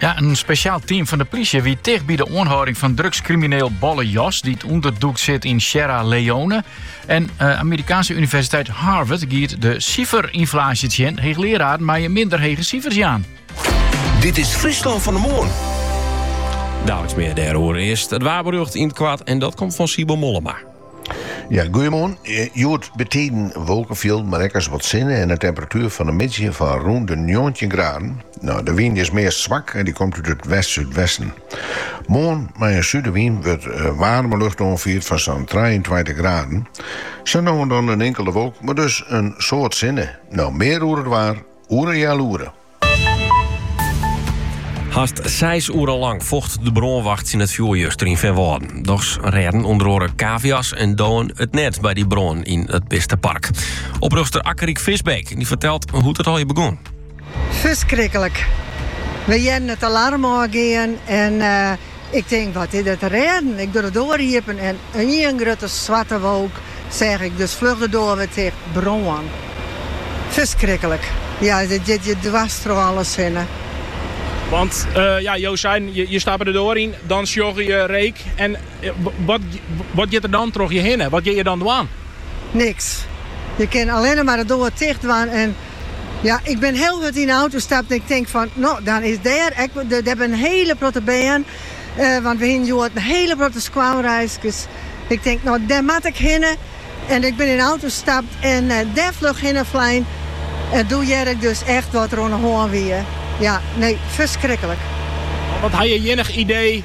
Ja, in spesjaal team fan de plysje wie ticht by de oanhâlding fan drugskrimineel Bolle Jos, dy't ûnderdûkt sit yn Sierra Leone. En uh, Amerikaanse Universiteit Harvard giet de siferynflaasje tsjin. Heechleararen meie minder hege sifers jaan. Dit is Fryslân fan 'e Moarn. Daliks mear dêroer, earst it waarberjocht yn it koart en dat komt fan Sibo Mollema. Ja, goeiemoarn. Hjoed bytiden wolkefjilden, mar ek ris wat sinne en in temperatuer fan de middei fan rûn de njoggentjin graden. No, de wyn is meast swak en dy komt út it west-súdwesten. Moarn mei in súdewyn wurdt waarme lucht oanfierd fan sa'n trijeentweintich graden. Sa no en dan in inkelde wolk, mar dus in soad sinne. No mear oer it waar oer in healoere. Hast seis oeren lang focht de brânwacht tsjin it fjoer juster yn Feanwâlden. Dochs rêden ûnder oare kavia's en dowen it net by dy brân yn it bistepark. Oprjochtster Akkerik Visbeek dy fertelt hoe't it allegear begûn. Ferskriklik. We hearden it alarm ôfgean en Ik tink, wat is der te rêden? Ik doch de doar iepen en ien grutte swarte wolk seach ik, dus fluch de doar wer ticht. Brân. Ferskriklik. Ja, it giet je dwers troch alles hinne. Want, ja, jo seiden, je stappe de doar yn, dan sjogge je reek en wat giet der dan troch je hinne? Wat kinne je dan dwaan? Niks. Je kinne allinne mar de doar ticht dwaan en. Ja, ik bin hiel hurd yn 'e auto stapt en ik tink fan, no, dan is dêr ek, dêr bin in hiele protte bern, want we hiene hjoed in hiele protte skoalreiskes. Ik tink, no, dêr moat ik hinne en ik bin yn 'e auto stapt en dêr fluch hinne flein en doe hearde ik dus echt wat der oan 'e hân wie. Ja, nee, ferskriklik. Wat ha je ienich idee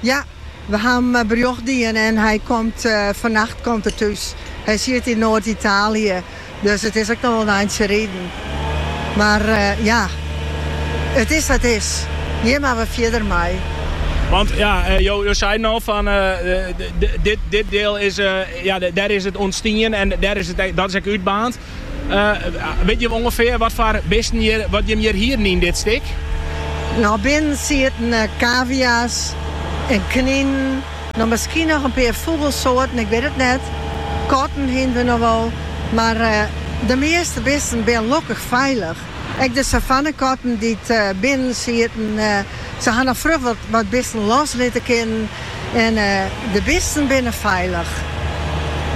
Ja, we ha him berjocht dien en hy komt fannacht komt er thús. Hy siet yn Noard-Italië, dus it is ek nochal in eintsje riden. Mar ja, it is sa't it is. Hjir moatte we fierder mei. Want ja, jo seiden al fan dit diel is, ja, dêr is it ûntstien en dêr is it ek, dat is ek útbaarnd. Wit jim ûngefear wat foar bisten hjir, wat jim hjir hienen yn dit stik? No, binnen sieten kavia's en kninen, no miskien noch in pear fûgelsoarten, ik wit it net. Katten hienen we noch wol, mar de measte bisten binne lokkich feilich. Ek de savannekatten dy't binnen sieten, se ha noch fluch wat bisten los litte kinnen en de bisten binne feilich.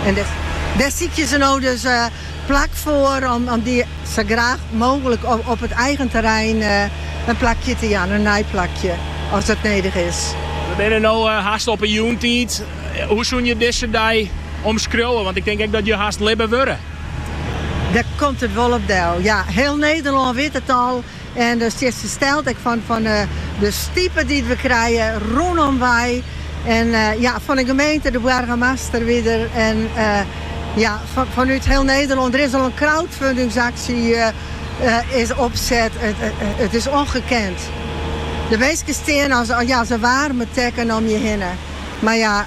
En dêr sykje se no dus plak foar om dy sa graach mooglik op it eigen terrein in plakje te jaan, in nij plakje, as dat nedich is. We binne no hast op 'e jûntiid. Hoe soene je dizze dei omskriuwe? Want ik tink ek dat je hast libbe wurde. Dêr komt it wol op del. Ja, hiel Nederlân wit it al en der stjit fersteld ek fan, fan de stipe dy't we krije rûnom wei. En ja, fan de gemeente, de boargemaster wie der en ja, fanút hiel Nederlân. Der is al in crowdfundingsaksje is opset. It is ongekend. De minsken stean as, ja, as in waarme tekken om je hinne. Mar ja,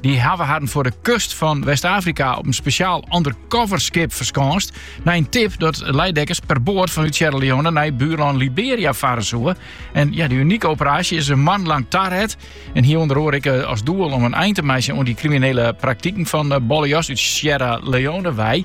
Dy hawwe harren foar de kust fan West-Afrika op in spesjaal undercover skip ferskânst. Nei in tip dat Leijdekkers per boat fanút Sierra Leone nei buurlân Liberia farre soe. En ja, dy unike operaasje is in moanne lang taret. En hie ûnder oare ek eh, as doel om in ein te meitsjen oan dy kriminele praktiken fan eh, Bolle Jos út Sierra Leone wei.